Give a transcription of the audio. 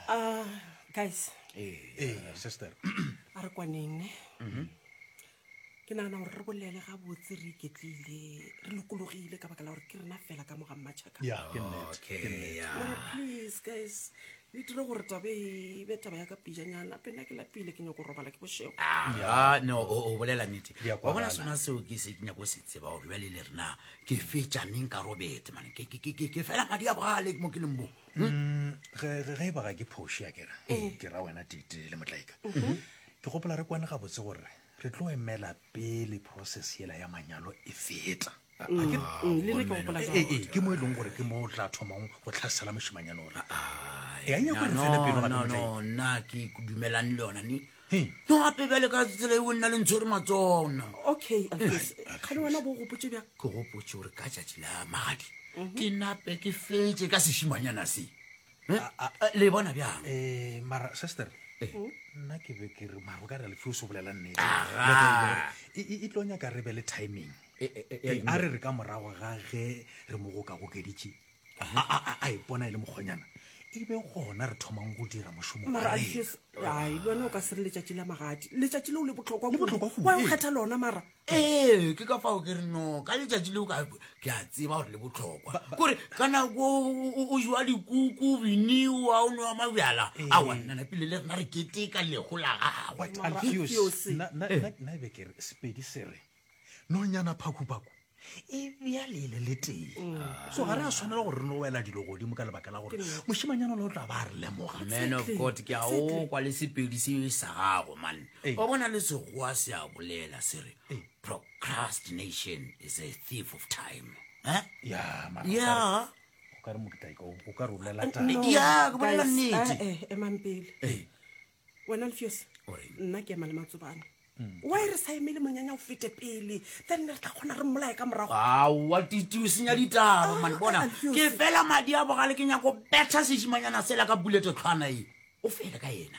Ah, guys ee sister a re kwaneng ne Mhm. ke nagana gore re bolele ga botse re iketlile re lokologile ka baka la gore ke rena fela ka moga mmatšhaka ya ke nnete ke Okay, nnete. yeah. Mara please guys le dire gore tabe e be taba ya ka pijanyana pena ke lapile ke nyako robala ke bošego Ah, no o o bolela nnete wa bona sona seo ke se ke nyako se tseba gore bjale le rena ke fetša neng ka robetse mane ke- ke- ke- ke- ke fela madi a bogale mo ke leng bo Mm, ge ge- ge e ba ga ke phoši a kera ke ra wena tite le motlaika ke gopola re kwane gabotse gore re tlo emela pele process yela ya manyalo e feta Ga ke- Mm, le nna ke gopola jwalo. Ee, ee, ke mo e leng gore ke mo o tla thomang go tlhasela mošimanyane ore e a nyako re fele pelo gape motlaika nna ke dumelane le yona ne He, ke gape bjale ka tsela eo nna le ntshwere matsona okay Alfis, kgale wena bo o gopotše bjang ke gopotše gore ka tšatši la magadi ke nape ke fetse ka sešimanyana se Eh, eh, le bona bjang um mara sister nna ke be ke re maro ka re lefio se bolela nnete Aga. Le ge- e- e- e tlo nyaka re be le timing Eh, eh, eh, ya Eh, a re re ka morago ga ge re mo gokagokeditše a ipona e le mokgonyana e be gona re thomang go dira mošomo ai lone o ka se re letšatši la magadi letšatši leo le botlhokwa wa o kgetha lona mara ee ke ka fao ke re no ka letšatši leo ke a tseba gore le botlhokwa kore ka nako o jewa dikuku biniwa o nowa mabjala a wannana pele le rena re keteka lego la gagwe nna e be ke re sepedi sere nonyana phakhuphakhu e bjale e le le tee so ga re a tshwanela gore re no wela dilo godimo ka lebaka la gore mošimanyana le o tla ba a re lemoga man of god ke a o kwa le sepedi se e sa gago man Ee. o bona le segoa se a bolela se re Ee. procrastination is a thief of time Eh? ya mara ya o ka re mokitlaika o ka re o bolela taba ya ke bolela guys, nnete eh, eh, emang pele Ee. wena lefiosa nna ke ema le matsobane mm. wa e re sa emele monyanya o fete pele then ne re tla kgona re mmolae ka morago aowa titi o senya ditaba ah, mane bona ke fela madi a bogale ke nyako betha sesimanyana sela ka bulete tlhwana e o fele ka ena